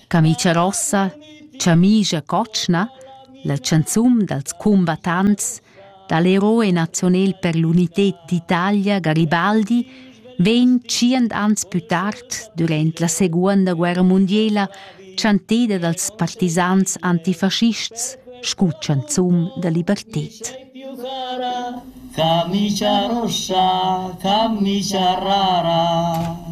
Camicia rossa, Chamischa cotschna, la chanzun dals cumbattants da l'Héros national per l'unità d'Italia Garibaldi vegn tschient ans pü tard, durant la Seguonda guerra mundiela, chanteda dals partisans antifaschists scu chanzun da liberted. Camicia rossa, camicia rara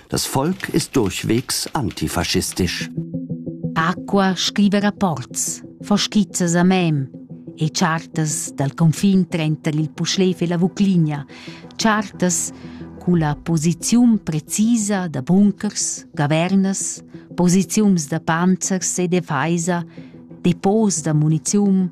Das Volk ist durchwegs antifaschistisch. Acqua scriva rapports, fa skizzas a mem e chartas dal confin trenter il Puschlev e la Vucligna, chartas culla posiziun precisa da bunkers, gavernas, posiziuns da panzers e defeisa, depots da muniziun,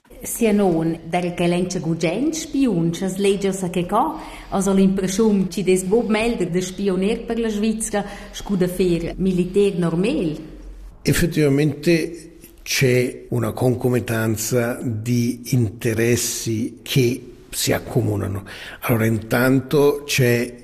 Sia nona, daco ch'el enza gugent spiun sch'as legia sa che ca, as ho l'impreschiun chi'd es buc meglder da spiuner per la Svizra scu da fer militer normal. Effettivamente c'è una concomitanza di interessi che si accomunano. Allora intanto c'è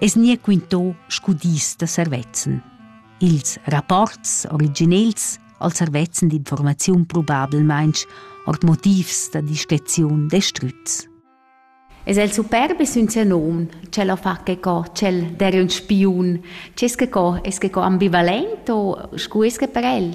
es gnir quinto scu dis da servezzan. Ils rapports originels al servezzan d'informaziun probablmainch ord motivs da discreziun destrüts. Es el superbi sün sieu nom, ch'el ho fa che co, ch'el der ün spiun, c'es che co, es che co ambivalent o scu es che per el?